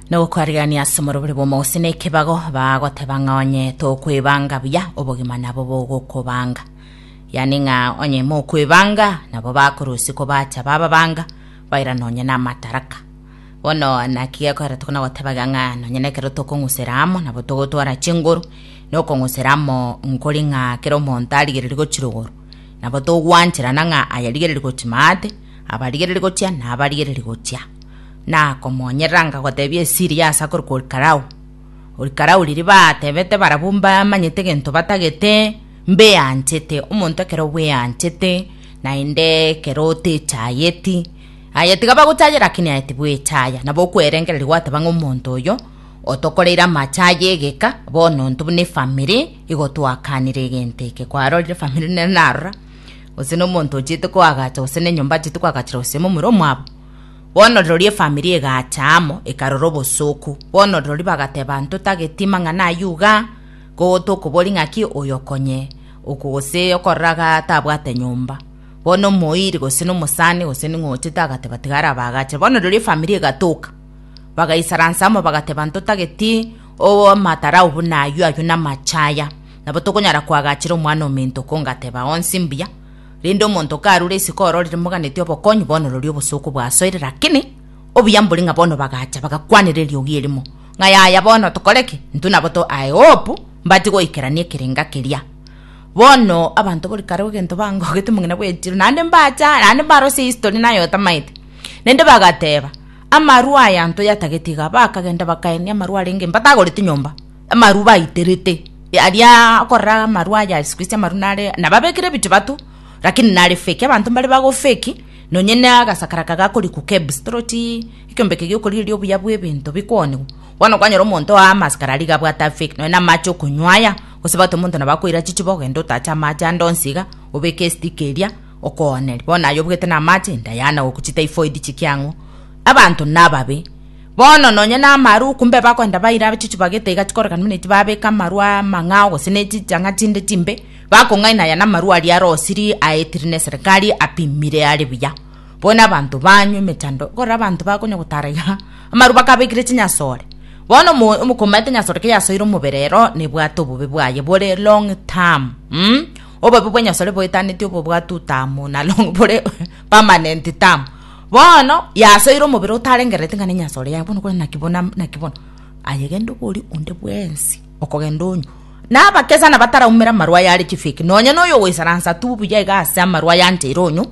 nogokwarigania ase omorobori bw'omogusii na ekebago bagoteba ng'a onye tokwebanga buya obogima nabo bogokobanga yaani ng'a onye mokwebanga nabo bakorusia kobacha bababanga baira nonye na amataraka bono naki gekorera tokona gotebaga ng'a nonye na ekero tokong'usera amo nabo togotwara chinguru nokong'usera amo nkori ng'a kera omonto arigereria gochirogoro nabo togwancherana ng'a ayarigereria gochia maate abarigereri gochia na abarigereri gochia, na komonyerera ngagotebia esiri ya ase akore kwa orikarau. Orikarau riria batebete barabwo mbamanyete egento batagete, mbeanchete, omonto ekero bweanchete, naende ekero otechayeti, aye tiga bagochayera lakini aye tibwechaya, nabo okwerengereria gwateba ng'a omonto oyo otokoreire amache aye egeka, bono intwe buna efamiri, igo twakanire egento eke, kwarorire efamiri nere narora. gose nomonto ochiete koagacha gose nenyomba achiete koagachera gose omomura omwabo bono rirorio efamiri egacha amo ekarora obosooku bono rirorio bagateba ntotageti mang'ana aywo iga ko tokobori ng'aki oyo okonye oko gose okoraga tabwate nyomba bono omoiri gose nomosani gose ning'o ochiete agateba tiga arabaagachera bono rirorio efamiri egatoka bagaisaransa amo bagateba ntotageti obo amatara awo buna aywo aywo namache aya nabo tokonyara koagachera Omwana-o-mento ko ngateba onsi mbuya, rende omonto karure isiko ororire moganeti obokonyi bonolori obosooku bwasoire, rakini obuya mbori ng'a bono bagacha bagakwanera eriogi erimo, ng'a yaya bono tokore ki? Intwe nabo to I hope mbati goikerania ekerenga keria. Bono abanto bori kare egento bangogete omong'ina bw'echiro naende mbacha naende mbarosie history naye otamaete. Rende bagateba, amarwa aya ntoyatagete iga, bakagenda bakaenia amarwa arenge mbatagorete nyomba. amaru baiterete aria okorora amaru aya Yesu Kristo amaru nare nababekire ebitubatu lakini nare fake abanto mbare bago fake nonye na agasakara aka gakori ku KEBS toroti ekiombeke giokorigereria obuya bwa ebinto bikoniwa bono kwanyora omonto oa amaskara aria iga abwate a fake nonye na amache okonywa aya gose bagote omonto nabo akoira chichupa ogende otache amache ande onsi iga obeke estick eria okoonere bono aye obwete na amache indaye ana gokuchii typhoid chikia ang'o abanto nababe. Bono nonya namaruku mbe bakoenda baire abachuchu bagete iga chikorokana buna eti babeka amaru amang'ao gose ne chichang'a chinde chimbe, bakong'aina aya namaru aria arosiri aetiri neserikari apimire are buya. Bono abanto banywa emechando ekorera abanto bakonya gotara iga amaru bakabekire chinyasore. Bono omo omokomaete enyasore keyasoire omobere ero nebwate obobe bwaye bore long term um obobe bwenyasore boetaneti obo bwa two term na long bore permanent term. Bono yasoire omobere otarengerereti ng'a nenyasore yaye bono, kore naki bono naki bono, ayegende oborie onde bwensi okogenda onywe. Na abakesana bataraumera amarwa aya are chifiki, nonye noyo ogoisaransa tu buya iga ase amarwa aya ancheire onywe,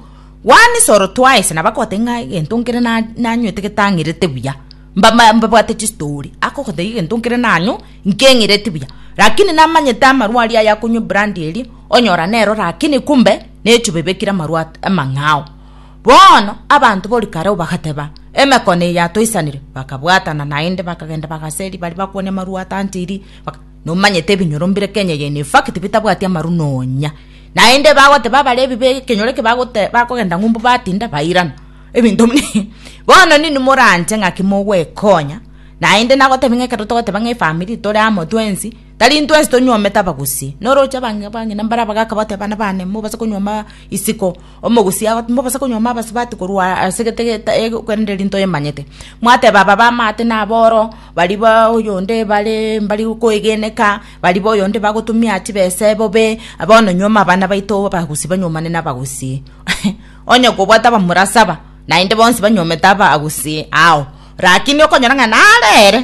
one soro twice, nabo akogotebi ng'a egento nkere na nanywete getang'erete buya, mba ma mbabwate chistori, akogotebia egento nkere nanywa nkeng'ereti buya, rakini namanyete amarwa aria aya akonywa ebrandi eria, onyora nero rakini kumbe nechube ebekire amarwa at amang'ao. Bono abanto bo rikarau bagateba, Emekone eye atoisanire. Bakabwatana naende, bakagenda bagaseri baria bakwania amarua atantiri. Nomanyete ebinyoro mbire Kenya eye ne fakiti bitabwati amaru nonya. Naende bagoteba abare ebibe ekenyoro eke bakogenda ng'umbu batinda bairana. Ebinto bono ninwe moranche ng'aki mogwekonya naende nagotebia ng'a ekero togoteba ng'a efamiri tore amo twensi tari intwensi tonyuomete abagusi. Noroche abang'ina mbare abagaka bagoteba bana bane mobase konyuoma isiko. Omogusi agoteema obosa konyuoma abasubati korwa ase egetegete korende eri ntoyemanyete. Mwateba aba b'amaate naboro, baria ba oyonde bare mbari koegeneka, baria ba oyonde bagotumia chibesa ebobe, bono nyuoma abana baito abagusi banyuomane nabagusi. Onye kobwate abamura saba, naende bonsi banyuomete abagusi ao, rakini okonyora ng'a naro ere,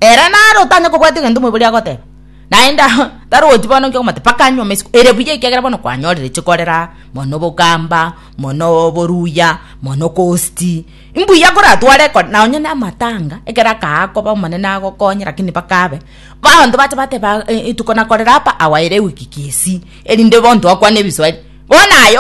ere naro otanya kobwati egento omoibori agoteba. Naende tarwoti bono inki okomata mpaka nyuma isiko ere buya ekiagera bono kwanyorire chikorera mono obogamba mono oboruya mono okosti imbuya koratware ekero na onye namatanga ekero akakoba omonene agokonye lakini mpaka abe baanto bacha bateba rituko nakorera apa awa ere ewiki gesi erinde bono twakwana ebiswahili bono aye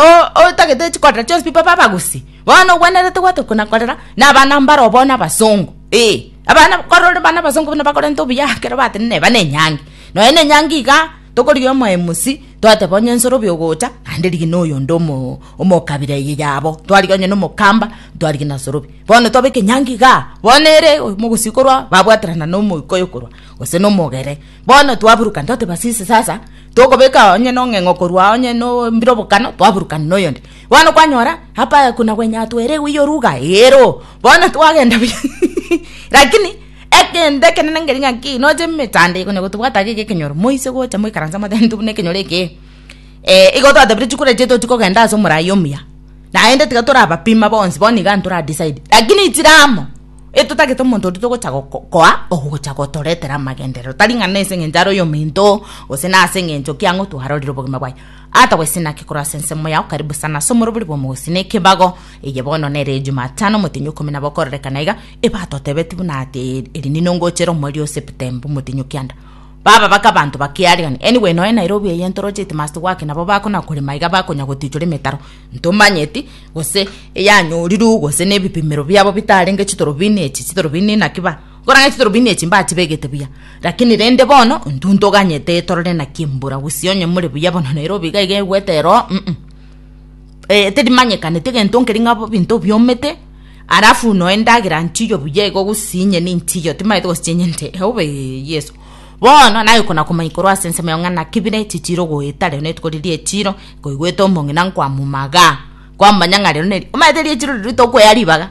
otagete chikorera chionsi pi baba abagusii bono ogwenerete gwatorwa nakorera na abana mbaro bono abasongo ee. Abana korende bana abasongo buna bakorenta obuya ekero batenena eba ne enyangi. Nonya ne enyangi iga tokorigia omoemusi twateba onye nsoro obe ogocha naende rigia noyo onde omo omokabira eye yabo. Twarigia onye na omokamba twarigia na nsoro obe. Bono twabeka enyangi igaa bono ere omogusii korwa babwaterana na omoika oyo korwa gose na omogere. Bono twaburukana twateba sisi sasa tokobeka onye na ong'eng'o korwa onye no mbire obokano twaburukana na oyonde. Bono kwanyora apa kuna gwenyatwa ere eguya oruga? Eero. Bono twagenda buya. Lakini egento ekenene nkeri ng'a ki noche emechando konya gotobwata iga ekenyoro moise gocha moikaranse motebete buna ekenyoro eke eh igo twatebire chikura echi tochi kogenda ase omorai omuya naende tiga torabapima bonsi bono iga ntora decide lakini chire amo etotagete omonto oria togocha goko koa ogocha gotoretera amagenderero tari ng'a nese engencho are oyominto gose nase engencho ki ang'o twarorire obogima bwaye. Ata gose naki korwa ase ensemo yao karibu sana ase omorobori bw'omogosi nekebago, eye bono nere Ejumatano omotenyi ikomi nabo okororekana iga, ebatotebeti buna ati eri nino ngochera omweri o Septemba omotenyi o kianda. Baba bake abanto ba Kiariani, anyway noe Nairobi eye ntoroche headmaster gwake nabo bakona korema iga bakonya gotichora emetaro ntomanyeti gose eyanyorirwe gose nebipimero biabo bitarenge chitorobini echi chitorobini naki ba Korang'a chitorobini echi mbachibegete buya, lakini rende bono ntuntoganyete etorore na kimbura, gose onye more buya bono Nairobi iga iga egwete ero, mm eh teri manyekaneti egento nkeri ng'a ebinto biomete, alafu noe endagera nchiyo buya igo gose inye ninchiyo timaete gose chinyente eobe Yeso. Bono nagekona komanya korwa ase ensemo yao ng'a naki bire chichire ogoeta rero rituko riria echiro koigwete omong'ina nkoamomaga, kwamanya ng'a rero neri omanyete ri'echiro riria tokoea ribaga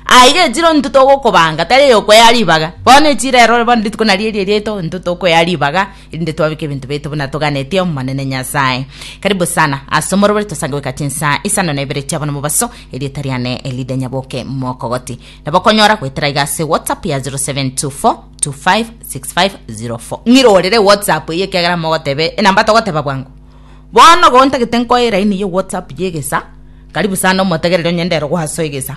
Aiga echiro intwe togokobanga, tari eyokwea ribaga. Bono echiro ero bono rituko nario eri erieto, intwe tokwea ribaga, erinde twabeke ebinto biaito buna toganeti Omonene Nyasae. Karibu sana ase omoroberi tosange goika chinsa isano na ibere chia bono mobaso, erieta riane Elida Nyaboke Mokogoti. Nabo okonyora goetera iga ase WhatsApp ya 0724256504. Ng'irorere WhatsApp eye ekiagera mogotebe enamba togoteba bwango. Bono igo ntagete nkoe line ya whatsapp ya egesa, karibu sana omotegereri onye ndero goasoa egesa,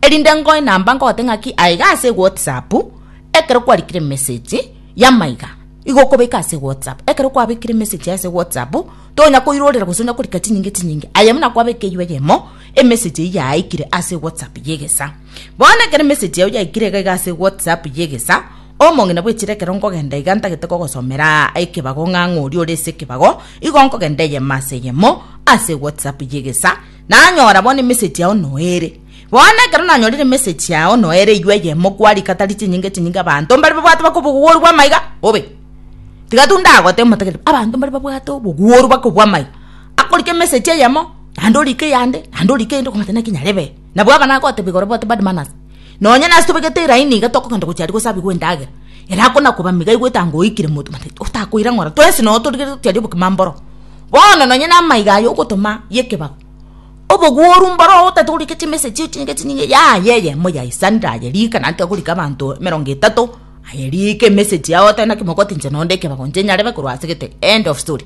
erinde nkoe namba nkogote ng'aki aiga ase whatsapp, ekero kwarikire emesegi yamaiga, igo okobeka ase whatsapp, ekero kwabekire emesegi ase whatsapp, tonya koirorera gose onya korika chinyinge chinyinge, aye buna kwabekeirwe eyemo, emesegi eyio yaikire ase whatsapp ya egesa. Bono ekero emessage yao yaikire iga iga ase whatsapp y'egesa, omong'ina bwechire ekero nkogenda iga ntagete kogosomera ekebago ng'a ng'a oria ore ase ekebago, igo nkogenda eyemo ase eyemo ase whatsapp y'egesa, nanyora bono emessage yao noere. Bono ekero nanyorire emessage yao noere eywo eyemo kwarika tari chinyinga chinyinga abanto mbare babwate baka obogogoru bw'ama iga bobe. Tiga tu ndagote omotegereri abanto mbare babwate obogogoru baka obw'ama iga, akorika emessage eyemo naende orike eyande, naende orike eyende okomanya naki nyarebe. Nabo ekana agoteba igoro bote, Bad manners. Nonya nase tobegete eraini iga tokogenda gochia aria gosabigwa endagera. Ere akona koba mega aigwete anga oikire moto mate otakoira ng'ora. Twensi noyo torigereire gochia aria obokima mboro. Bono nonya namaiga aye ogotoma yekebago. Oboguoru mboro otate gorika chimessage chio chinyinge chinyinge yaye yeye moyo aisanire aye rika naki agorika abanto emerongo etato aye rika emessage yao oteba naki mogoti inche nonde ekebago inche nyarebe korwa ase gete. End of story.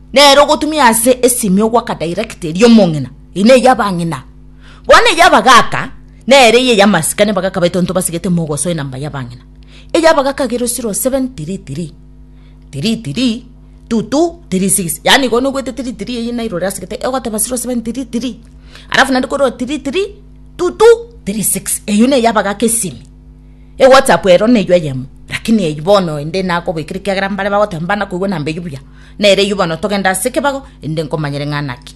Nere ogotumia ase esimio goaka direct eria omong'ina, eye neye abang'ina. Bono eye abagaka, nere eye yamasikani abagaka baito ntobasigete mogoso enamba yabang'ina. Eye abagaka agere zero seven three three three three two two three six yaani igo nogoeta three three eye nairo orasegete egoteba zero seven three three alafu naende korwa three three two two three six eyio neye abagaka esimi. Ewhatsapp ero neywo eyemo, rakini eywo bono ende nakoboikera ekiagera mbare bagoteba mbana koigwa nambe eywo buya. Nere eywo bono togende ase ekebago ende nkomanyere ng'a naki.